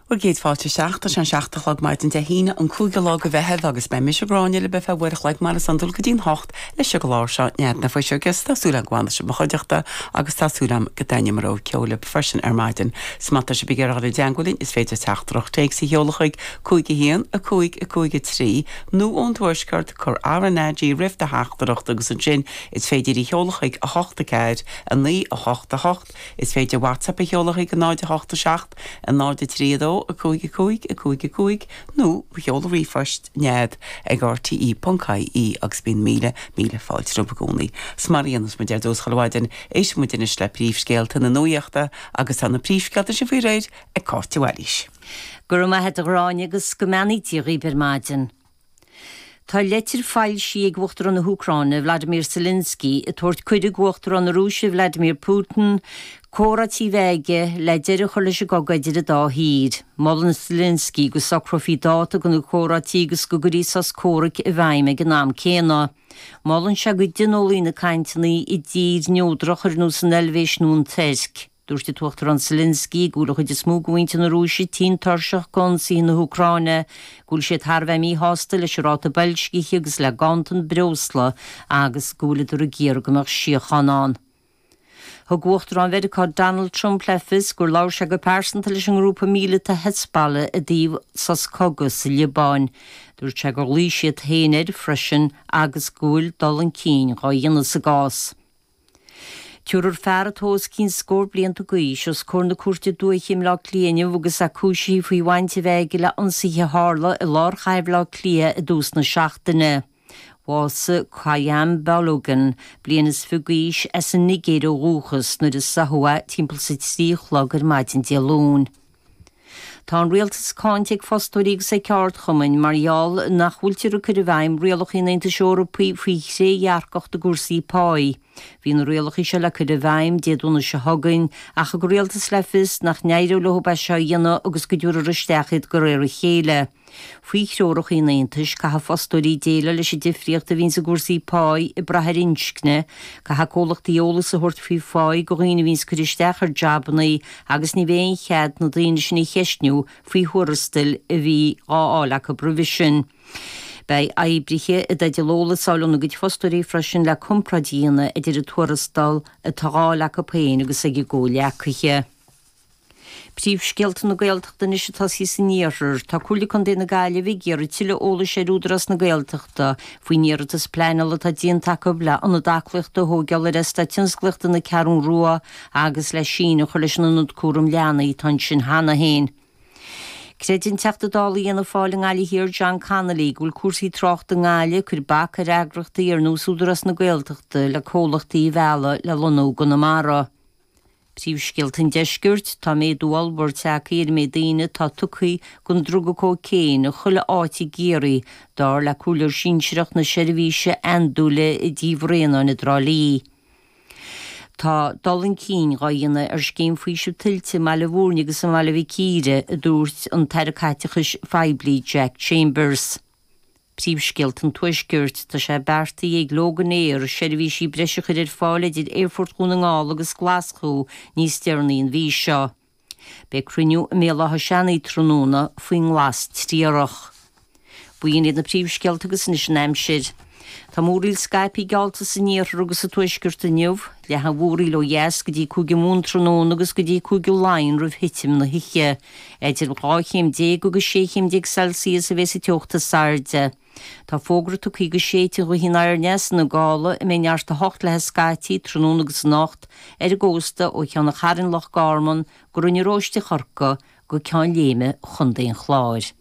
Bhur gcéad fáilte isteach, tá sé an seacht a chlog maidin Dé hAoine, an cúigiú lá go Mheitheamh agus beidh mise, Gráinne, libh ar feadh uair a chloig mar is iondúil go dtí'n hocht leis an gclár seo Nead na Fuiseoige agus tá súil agam go bhfanfaidh sibh i mo chuideachta agus tá súil agam go dtaitneoidh mo rogha ceoil libh freisin ar maidin. So má tá sibh ag iarraidh a bheith i dteangmháil linn is féidir teachtaireacht téacs a sheoladh chuig, 51553, nó ón Tuaisceart, cuir RnaG roimh do theachtaireacht agus ansin is féidir í a sheoladh chuig, 84988. Is féidir WhatsApp a sheoladh chuig 0, 8, 7, 0, 3, 2, 5, 5, 5, 5 nó seol ríomhphost, nead, ag rte.ie agus bíonn míle, míle fáilte rompu i gcónaí. 'S mar a dhéanas muid ar dtús chuile mhaidin, éisteann muid anois le príomhscéalta na nuaíochta agus tá na príomhscéalta sin faoi réir ag Cáit de Bhailís. Go raibh maith a't a Ghráinne agus go mbeannaí Dia dhaoib ar maidin. Tá leitir foilsithe ag Uachtarán na hÚcráine, Vladimir Zelensky, ag tabhairt cuireadh go Uachtarán na Rúise, Vladimir Putin, comhráití a bheith aige le deireadh a chur leis an gcogadh idir an dá thír. Molann Zelensky go socrófaí dáta go na comhráití agus go gcuirí sos comhraic i bhfeidhm ag an am céanna. Molann sé go dtionólaí na cainteanna i dtír neodrach ar nós an Eilvéis nó an Tuirc. Dúirt an tUachtarán Zelensky go bhfuil an chuid is mó de mhuintir na Rúise tinn tuirseach d'ionsaithe na hÚcráine, go bhfuil siad thar a bheith míshásta leis an ráta boilscithe agus le ganntan breosla agus go bhfuileadar ag iarraidh go mbeadh síocháin ann. Thug Uachtarán Mheiriceá Donald Trump le fios gur labhair sé go pearsanta leis an ngrúpa míleata Hezbollah i dtaobh sos cogaidh sa Liobáin. Dúirt sé gur ghlaoigh siad féin air freisin agus go bhfuil dul chun cinn dhá dhéanamh sa gcás. Tabharfar fear atá os cionn scór blianta d'aois os comhair na Cúirte Dúiche i mBleá Cliath inniu agus é cúisithe faoi bhaint a bheith aige le hionsaithe a tharla i lár chathair Bhleá Cliath i dtús na seachtaine. Bhásaigh Kayam Balogun, bliain is fiche d'aois, as an Nigéir ó dhúchas, nuair a sáthadh é timpeall 's a trí a chlog ar maidin Dé Luain. Tá an Rialtas cáinte ag fostóirí agus ag ceardchumainn mar gheall nach bhfuiltear ag cur i bhfeidhm rialacha an Aontais Eorpaigh faoi thrédhearcacht i gcúrsaí páí. Bhí na rialacha seo le cur i bhfeidhm Dé Domhnaigh seo chugainn, ach thug an Rialtas le fios nach n-éireodh leo é seo a dhéanamh agus go dtabharfar isteach iad de réir a chéile. Faoi threoracha an Aontais, caithfidh fostóirí déileáil leis an difríocht a bhíonns i gcúrsaí páí ag brath ar inscne, caithfidh comhlachtaí eolas a thabhairt faoi pháí go dhaoine a bhíonns ag cur isteach ar jabanna agus ní bheidh aon chead na daoine sin a cheistniú faoi thuarastail a bhí dhá fháil acu roimhe sin. Beidh oibrithe i dteideal eolas a fháil óna gcuid fostóirí freisin le comparáid a dhéanamh idir an tuarastal atá dhá fháil acu féin agus ag a gcomhleacaithe. Príomhscéalta na Gaeltachta anois ag tosaí san iarthar. Tá Comhairle Contae na Gaillimhe ag iarraidh tuilleadh eolais ar Údarás na Gaeltachta faoin iarratas pleanála atá déanta acu le Ionad Aclaíochta a thógáil ar Eastát Tionsclaíochta na Ceathrún Rua agus le síneadh a chur leis an Ionad Cúram Leanaí atá ansin cheana féin. Creideann Teachta Dála Fhianna Fáil i nGaillimh Thiar, John Connolly, go bhfuil cúrsaí tráchta i nGaillimh ag cur bac ar eagraíochtaí ar nós Údarás na Gaeltachta le comhlachtaí a mhealladh le lonnú i gConamara. Príomhscéalta an Deiscirt, Tá méadú ollmhór tagtha ar an méid daoine atá tugtha don druga cóicéin in chuile áit i gCiarraí, dar le comhairleoir sinsearach na seirbhíse andúile i dTí Bhraonáin i dTrá Lí. Tá dul chun cinn dhá dhéanamh ar Scéim Faoisimh Tuilte i mBaile Bhúirne agus i mBaile Mhic Íre, a dúirt an tAire Caiteachais Phoiblí Jack Chambers. Príomhscéalta an Tuaiscirt, Tá sé beartaithe ag Loganair seirbhísí breise a chur ar fáil idir Aerfort Dhún na nGall agus Glaschú níos deireanaí an mhí seo. Beidh cruinniú i mBéal Átha Seanaidh tráthnóna faoin nglas triarach. B'in iad na príomhscéalta agus anois an aimsir. Tá múraíl scaipthe geallta san iarthar agus sa tuaisceart inniu. Leathfaidh an mhúraíl ó dheas go dtí Cúige Mumhan tráthnóna agus go dtí Cúige Laighean roimh thitim na hoíche. Idir dhá chéim déag agus sé chéim déag Celsius a bheidh sa teocht is airde. Tá fógra tugthaí go séidfidh an ghaoth aniar aneas ina gála a mbeidh neart a hocht léi scaití tráthnóna agus anocht ar an gcósta ó Cheann an Chairn, Loch Garman, go Rinn an Róistigh, Chorcaigh, go Ceann Léime, Chontae an Chláir.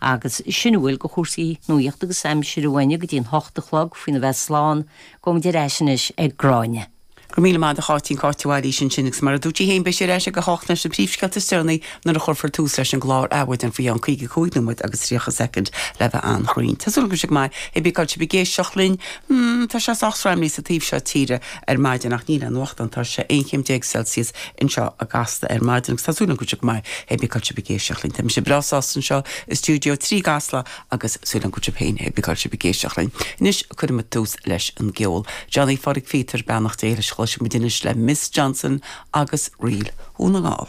Agus sin a bhfuil de chúrsaí nuaíochta agus aimsire uainne go dtí an h-ocht a chlog faoina bheith slán. Gabhfaidh muid ar ais anois ag Gráinne. Go raibh míle maith agat a Cháitín, Cáit de Bhailís ansin agus mar a dúirt sí féin beidh sí ar ais ag a h-ocht leis na príomhscéalta is deireanaí nuair a chuirfear tús leis an gclár Adhmhaidin faoi cheann caoga cúig nóiméad agus tríocha soicind le bheith an-chruinn. Tá súil agam go bhfuil sibh go maith hé bí cá bhfuil sibh ag éisteacht linn. Tá sé sách sraimlí sa taobh seo tíre. ar maidin ach níl aon fhuacht ann tá sé 11 céim celsius anseo i gCasla ar maidin agus tá súil agam go bhfuil sibh go maith hé bí cá bhfuil sibh ag éisteacht linn tá mise breá sásta anseo i stiúideo trí i gCasla agus súil agam go bhfuil sibh féin hé bí cá bhfuil sibh ag éisteacht linn anois cuirfidh muid tús leis an gceol Johnny Pháraic Pheter Beannacht Dé leis a chloisfidh muid anois le Miss Johnson agus Ríl Dhún na nGall.